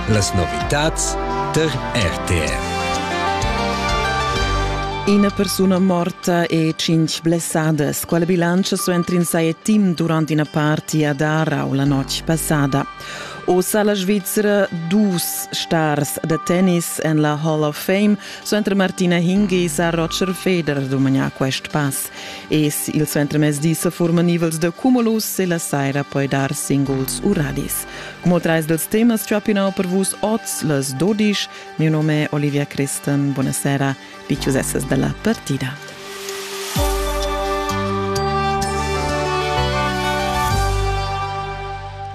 Las novitads tar RTR. Ina persuna morta e cinc blessadas. Quale bilancio suenter in saie team durante una party a Darau la notte passada? Ossa la Svizzera dus stars da tennis en la Hall of Fame suenter Martina Hingis a Roger Federer dumagna quest pass. Es il suentermezdi sa furman nivels da cumulus e la saira poi dar singuls u radis. Como trais dels temas ciapinau per vus oz les dodisch. Mio nome è Olivia Christen. Buonasera, diciuseses della partita.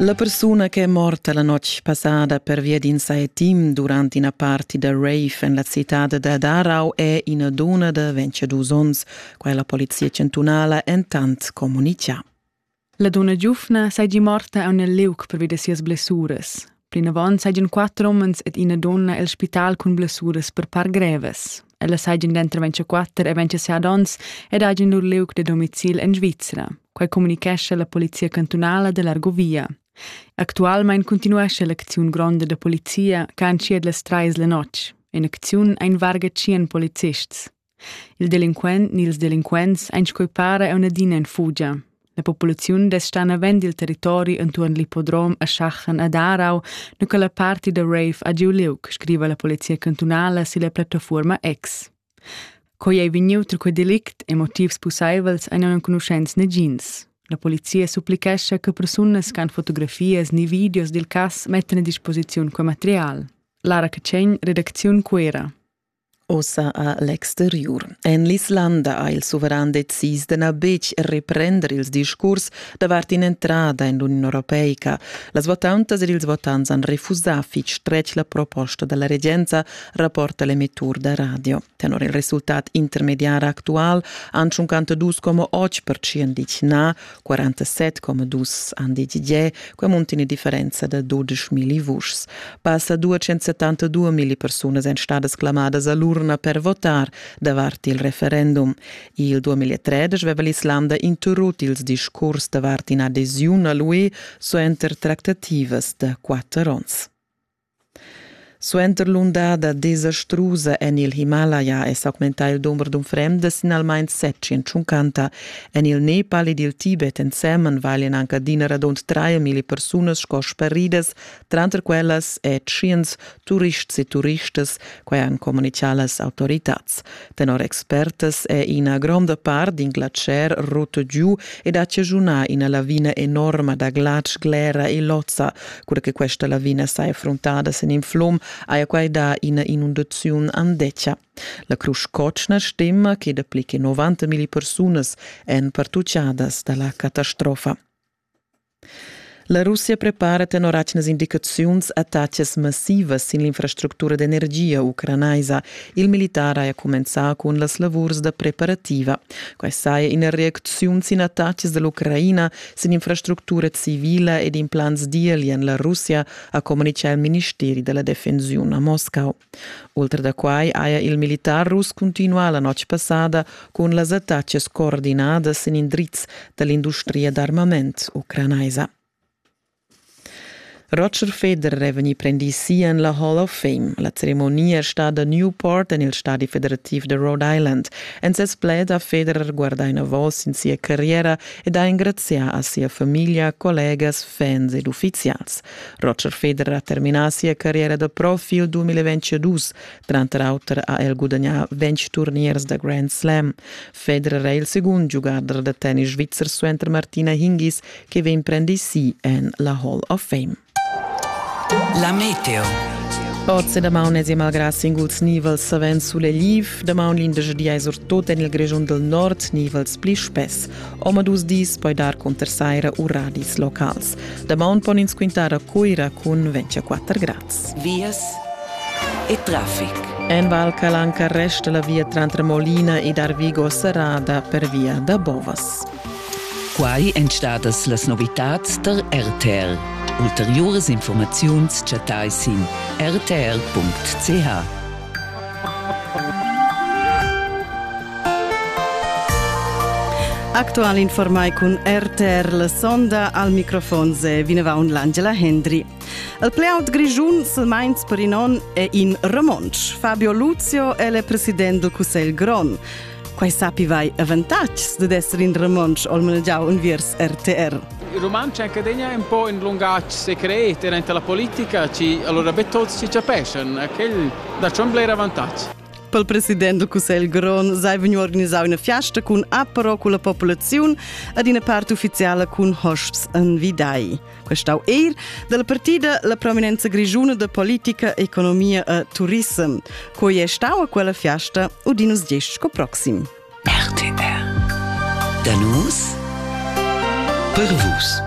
La persuna che è morta la notg passada pervia d'in saetim durant ina party da rave en la citad da Darau è ina duna da 22 onns, quai la polizia chantunala entant communitgà. La duna giufna seigi morta a un liuc pervi da sias blessuras. Plinavant seigien quatter umens ed ina donna el spital cun blessuras per par grevas. Ella sajan dentro 24 e 27 onns ed hajan lur liug da domicil en Svizra. Quai communicescha la polizia cantunala dell'Argovia. Actualmein continuesce l'acziun gronda da polizia che han schied las trais la notg. In acziun ein varga tschien polizists. Il delinquent ni ils delinquents ein scoi para e un'adina in fugia. La populaziun desta navend il territori entuorn l'ippodrom a Schachen ad Aarau, nu che la parti da rave ha giu liug, scriva la polizia cantunala silla plattafuorma X. Coi ei vegniu tra quei delict e motivs pusseivels ein enconuschents negins. La polizia supplichescha che persunas che han fotografias ni videos dil cass mettan a disposiziun quei material. Lara Cacegn, redacziun Cuera. Ussa a l'exteriur. En l'Islanda ha il suveran decis de na betg reprender ils discurs davart in'entrada in l'Union Europeica. Las votantas ed ils votants han refusà fitg stretg la proposta della regenza, rapporta l'emettur da radio. Tenor il resultat intermediar actual han 52,8% ditg na, 47,2 han decidier, quei munti eine differenza da 12.000 vuschs. Passa 272 mila persunas ein stadas clamadas all'urna per votar davart il referendum. Il 2013 veva l'Islanda interrut ils discurs davart in adesiun a l'UE suenter tractativas da quatter ons. Suenter l'undada desastrusa en il Himalaya è s'augmentà il dumber d'unfrenda sin almain setschient tschuncanta. En il Nepal ed il Tibet ensemen valian anc adina radund traemilli persunas sco sparidas, tranter quellas è tschient turists e turistas, quai han communitgà las autoritads. Tenor expertas è ina gronda part d'in glatscher rutta giu ed ha chaschunà ina lavina enorma da glatsch, glera e lozza. Cura che questa lavina saja fruntada sin in flum, haja quai dà ina inundaziun andetga. La Crusch Cotschna stima che dapli che 90 milli persunas èn pertutgadas da la catastrofa. La Russia prepara tenor atgnas indicaziuns attacas massivas sin l'infrastructura d'energia ucranaisa. Il militar haja cumenzà cun las lavurs da preparativa. Quai saja ina reacziun sin attacas da l'Ucraina sin infrastructura civila ed implants d'eli en la Russia, ha communitgà il ministeri da la defensiun a Moscau. Ultra da quai haja il militar russ cuntinuà la notg passada cun las attacas coordinadas en indrizs da l'industria d'armament ucranaisa. Roger Federer è vegnì prendì si en la Hall of Fame. La ceremonia è stada Newport en il stadi federativ de Rhode Island. En ses pled ha Federer guardà enavos sin sia carriera ed ha engrazià a sia famiglia, collegas, fans ed uffizials. Roger Federer ha terminà sia carriera da prof il 2022. Tranter auter ha el gudagnà 20 turniers da Grand Slam. Federer è il segund giugador da tennis svizzer suenter Martina Hingis che vegn prendì si en la Hall of Fame. La Meteo Oz e damaun es malgrà singuls nivels savens sulegliv, damaun l'indesch di ais er tot en il Grischun del Nord nivels pli spess. Omadus dis poi dar conter saira u radis locals. Damaun pon ins quintar a Cuira cun 24 grads. Vias e traffic. En Val Calanca resta la via tranter Molina ed Arvigo serrada per via da Bovas. Quai èn stadas las novitads tar RTR. Ulteriuras informaziuns chattai sin rtr.ch. Actual informai cun RTR la sonda al microfon se vinavaun l'Angela Hendry. El playout grigiun se Mainz per in on e in romonsch. Fabio Luzio è le president del Cussegl Gron. Quai sapi vai avantatgs dad esser in romontsch al malgiau unviers RTR. Il romontsch accadegna un po in lungatg secret durante la politica ci allora be tuts ci capeschan quel da c'è un bler avantatg. Pel president do Cussegl Gron sei vegnu organisau una fiasta cun apero cu la popolaziun ad ina part ufficiala cun hosts an Vidai. prestau eir dalla partida la prominenza grischuna da politica, economia e turissem. Quei è stau a quella fiasta udin us diesch sco proxim. RTR. Da nus per vus.